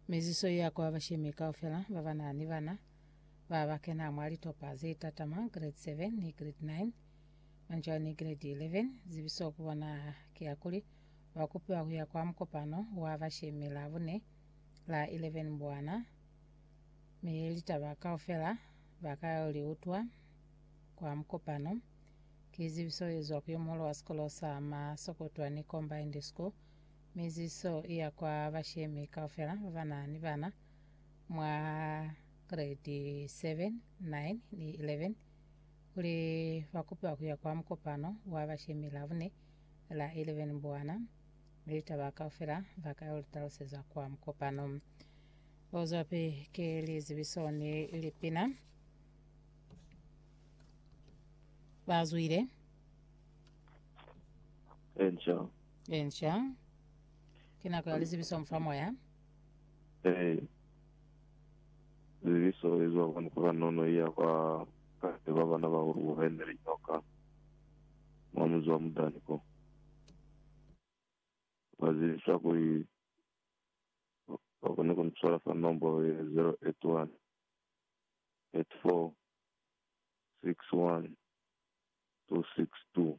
Miziso ya kwa bashemi kaufela ba ba na ni bana ba ba kena mwa litopa ze tatama, Grade 7 ni Grade 9, manzhwa ni Grade 11. Zibiso ku bona ki ya kuli ba kupiwa ku ya kwa mukopano wa bashemi Labune la 11 Mbwana, mi litaba kaufela ba ka yo li utwa kwa mukopano. Ki zibiso ye zwa ku yo muhulu wa sikolo sa Masokotwa ni Combined School. Miziso iya kwa bashemi kaufela babana ni bana mwa grade 7, 9 ni 11 kuli bakupiwa kuya kwa mukopano wa bashemi Labune la 11 Mbwana. Litaba kaufela bakayo litalusezwa kwa mukopano. Buzwapi ki lizibiso ni lipina. Bazwile. Angel Enca. Ki nako ya lizibiso mu fa moya. Ee. Lizibiso li zwa kwani kwa Kanono i ya kwa Kate ba bana ba Uruwa ba ineli nyoka mwa muzi wa Mudani ko. Ba zibisa kuli ba koni ku ni swala fa nombolo ye 081 84 61 262.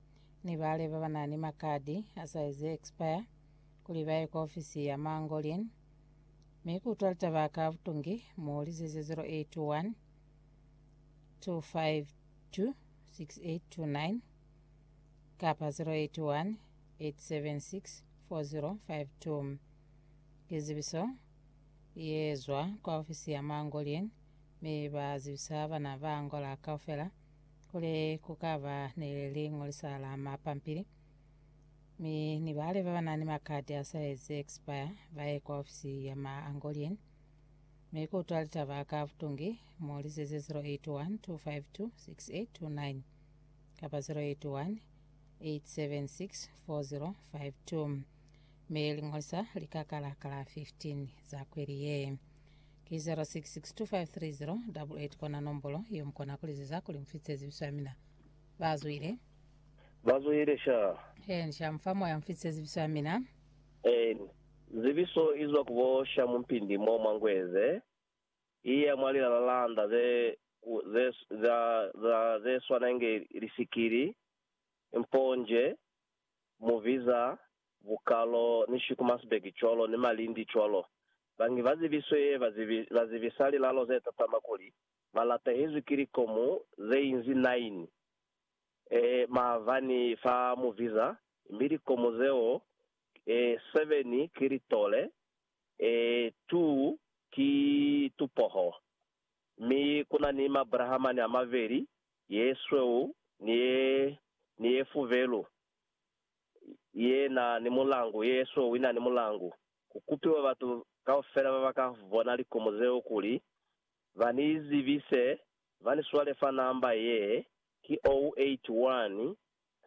ni bale ba ba na ni makadi a saizi e ekspaya kuli ba ye kwa ofisi ya Mangolin mi ku utwa litaba ka butungi, mu lizeze 081 252 6829 kapa 081 876 4052. Lizibiso li ezwa kwa ofisi ya Mangolin mi ba zibisa bana ba Angola kaufela kuli ku ka ba ni liñolisa la mapampili, mi ni bale ba ba na ni makati a sa ezi expire ba ye kwa ofisi ya Maangolien, mi ku utwa litaba ka butungi, mu lizeze 081 252 6829 kapa 081 876 4052 mi liñolisa li ka kala ka la 15 za kweli ye. Ki 0662530880 kona nombolo ye mukona kulizeza kuli mufitise zibiso ya mina. Ba zwile. Ba zwile sha. Hen sha mufa moya mufitise zibiso ya mina. Hen. Zibiso izwa ku bo sha mumpindi mo mwa Ngweze, iya mwa lilala landa ze ku ze za za zeswana inge lisikili, mponje, mu biza Bukalo ni Schikumasberg cwalo ni Malindi cwalo. Bangi ba zibiswe ye ba zibisa lilalo ze tatama kuli, ba latahezwi ki likomu ze inzi nine e maavani fa mu biza, mi likomu zeo e seven ki litole, e two ki tupoho, mi kuna ni mabrahamani a mabeli ye sweu ni ye ni ye fuvelu, ye na ni mulangu, ye ye sweu i na ni mulangu. Ku kupiwa batu kaufela ba ba ka bona likomo zeo kuli ba ni zibise, ba ni swale fa namba ye, ki 081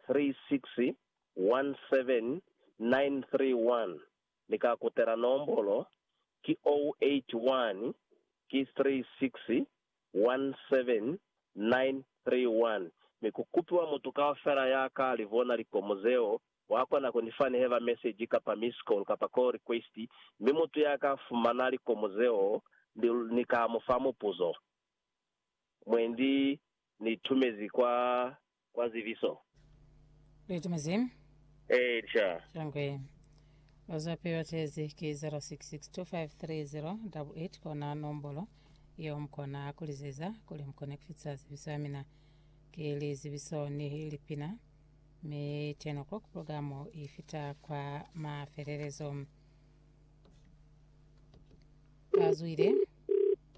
36 17931. Ni ka kutela nombolo, ki 081 ki 36 17931 mi ku kupiwa mutu kaufela ya ka li bona likomo zeo, wa kona ku ni fa ni heba meseji kapa miss call kapa call request, mi mutu ya ka fumana likomo zeo ni, ni ka mu fa mupuzo. Mwendi ni itumezi kwa Kwa zibiso. Luitumezi. Eca. Shangwe. Bazapi batezi ki 0662530888 kona nombolo yeo mukona kulizeza kuli mukone kufitisa zibiso ya mina. Ki lizibiso ni lipina. Mi 10 o'clock programo ifita kwa mafelelezo. Bazwile.